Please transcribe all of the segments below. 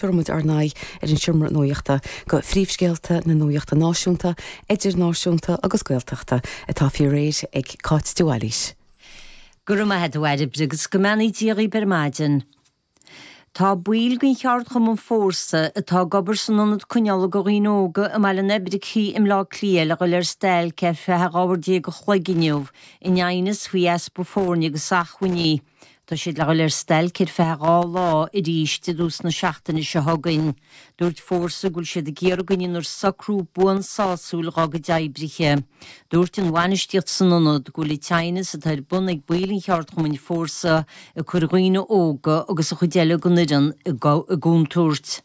Chuir muid ár n-aghaidh ar an Seomra Nuachta go príomhscéalta na nuachta náisiúnta, idirnáisiúnta agus Gaeltachta atá faoi réir ag Cáit de Bhailís. Go raibh maith a't a Bhairbre agus go mbeannaí Dia dhaoibh ar maidin. Tá baill den cheardchumann Fórsa, atá ag obair san Ionad Coinneála do Dhaoine Óga i mBaile an Oibricigh i mBleá Cliath le dhul ar stailc ar feadh 12 uair a chloig inniu in aighneas faoi easpa foirne agus achmhainní. Tá siad le dhul ar stailc ar feadh dhá lá arís i dtús na seachtaine seo chugainn. Dúirt Fórsa go bhfuil siad ag iarraidh go ndéanfar socrú buan sásúil dá gcuid oibrithe. Dúirt an bhainistíocht san ionad go bhfuil an t-aighneas atá ar bun ag baill an cheardchumainn Fórsa ag cur daoine óga agus an chuid eile den fhoireann i gcontúirt.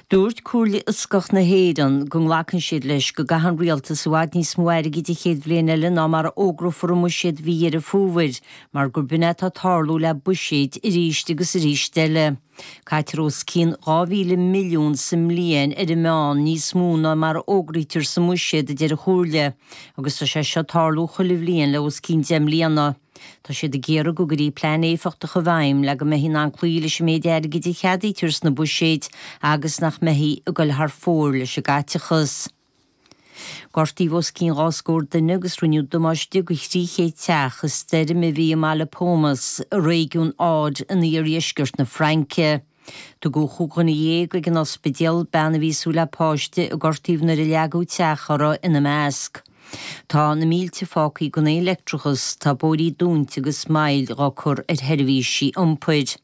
Dúirt Comhairle Fhioscach na hÉireann go nglacann siad leis go gcaitheann rialtais i bhfad níos mó airgid a chéad bhliain eile ná mar a fhógrófar i mbuiséad mhí Dheireadh Fómhair mar gur b'in é atá tarlú le buiséid arís agus arís eile. Caitear os cionn dhá mhíle milliún sa mbliain ar an meán níos mó ná mar a fhógraítear sa mbuiséad, a deir an Chomhairle, agus tá sé seo ag tarlú chuile bhliain le os cionn deich mbliana. Tá siad ag iarraidh go gcuirtí plean éifeachtach i bhfeidhm le go mbeifí in ann cloí leis an méid airgid a cheadaítear sna buiséid agus nach mbeifí ag goil thar fóir leis an gcaiteachas. Gortaíodh os cionn dhá scór duine agus rinneadh damáiste go 300 teach i stoirm a bhí i mbaile Pomas, i réigiún Aude in iardheisceart na Fraince. Tugadh cúig dhuine dhéag ag an ospidéal bean a bhí ag súil le páiste i gcur taobh nuair a leagadh teach orthu ina measc. Tá na mílte fágthaí gan aon leictreachas, tá bóithrí dúnta agus moill á cur ar sheirbhísí iompair.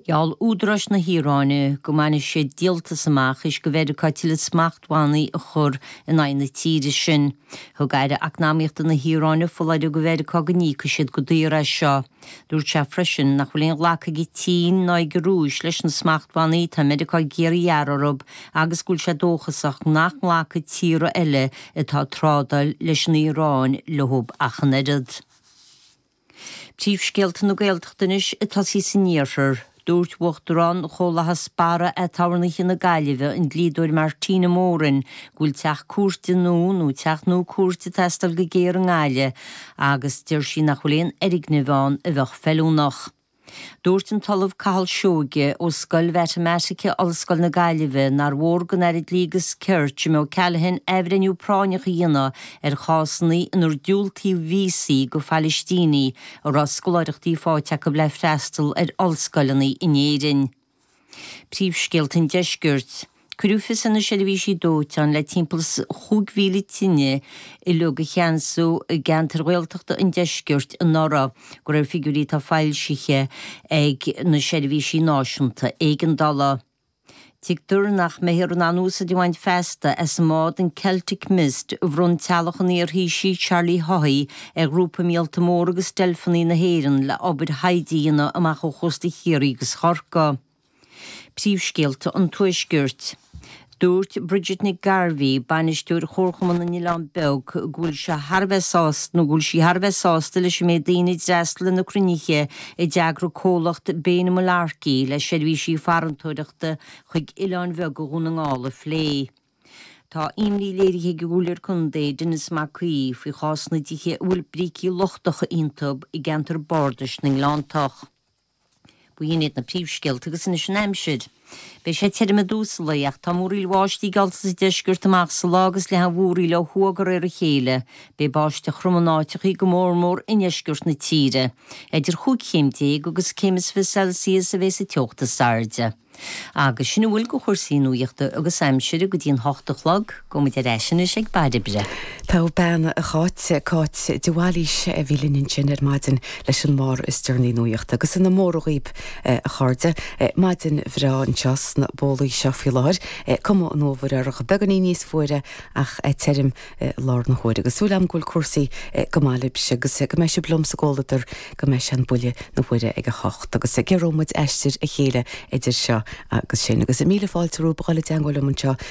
Gheall údaráis na hIaráine go mbainfidh siad díoltas amach is go Mheiriceá tuilleadh smachtbhannaí a chur in aghaidh na tíre sin. Thug aire eacnamaíochta na hIaráine foláireamh go Mheiriceá go n-íocfadh siad go daor as seo. Dúirt sé freisin nach bhfuil aon ghlacadh ag an tSín ná ag an Rúis leis na smachtbhannaí atá Meiriceá ag iarraidh a ghearradh orthu agus go bhfuil sé dóchasach nach nglacfaidh tíortha eile atá ag trádáil leis an Iaráin leo ach an oiread. Príomhscéalta na Gaeltachta anois ag tosaí san iarthar. Dúirt Uachtarán Chomhlachas Barra Aturnaetha na Gaillimhe, an dlíodóir Martina Moran, go bhfuil teach cúirte nua nó teach nua cúirte teastáil go géar i nGaillimh agus deir sí nach bhfuil aon fhoirgneamh ann a bheadh feiliúnach. Dúirt an tOllamh Cathal Seoige, ó Scoil Mhatamaitice Ollscoil na Gaillimhe, nár mhór don Aire Dlí agus Cirt, Jim O'Callaghan, athbhreithniú práinneach a dhéanamh ar chásanna inar diúltaíodh víosaí go Phalaistínigh, a raibh scoláireachtaí faighte acu le freastal ar ollscoileanna in Éirinn. Príomhscéalta an Deiscirt. Cuireadh fios ar na seirbhísí dóiteáin le timpeall is 5,000 tine uilig a cheansú i gceantair Ghaeltachta an Deiscirt anuraidh, de réir figiúirí atá foilsithe ag na seirbhísí náisiúnta éigeandála. Tuigtear nach mbeifear in ann úsáid a bhaint feasta as an mbád, an Celtic Mist, a bhronn teaghlach an iar-Thaoisigh Charlie Haughey ar Ghrúpa Míolta Mór agus Deilfeanna na hÉireann le obair thaighde a dhéanamh amach ó chósta Chiarraí agus Chorcaí. Príomhscéalta an Tuaiscirt. Dúirt Bridget Nic Gairbheith, Bainisteoir Chomharchumann na nOileán Beag, go bhfuil sé thar a bheith sásta, nó go bhfuil sí thar a bheith sásta leis an méid daoine a d'fhreastal ar na cruinnithe, a d'eagraigh comhlacht Bane Mullarkey le seirbhísí farantóireachta chuig oileáin bheaga Dhún na nGall a phlé. Tá imní léirithe ag an gComhairleoir Contae, Denis Mac Aoidh, faoi chás na dtithe a bhfuil brící lochtacha iontub i gceantar Bardais na nGleanntach. B'in iad na príomhscéalta agus anois an aimsir. Beidh sé tirim i dtús an lae, ach tá múraíl bháistí geallta sa deisceart amach sa lá agus leathfaidh an mhúraíl ó thuaidh de réir a chéile. Beidh báisteach throm in áiteachaí, go mór mór i ndeisceart na tíre. Idir chúig chéim déag agus céim is fiche Celsius a bheidh sa teocht is airde. Agus sin a bhfuil de chúrsaí nuaíochta agus aimsire go dtí an hocht a chlog. Go muid ar ais anois ag bairr oibre. Taobh bean a Cháit, Cáit de Bhailís a bhí linn ansin ar maidin leis an mbarr is deireanaí nuaíochta agus ina mór dhaoib a chairde. Maidin bhreá anseo sna bólaí seo faoi láthair. Cuma an fhómhair uirthi. Beagáinín níos fuaire ach tirim i láthair na huaire. Agus súil agam go bhfuil cúrsaí go maith libhse agus go mbeidh sibh liom sa gcomhluadar go mbeidh sé an buille na huaire ag a hocht agus giorróimid aistir a chéile idir seo agus sin. Agus míle fáilte romhaibh a dhul i dteangmháil liom anseo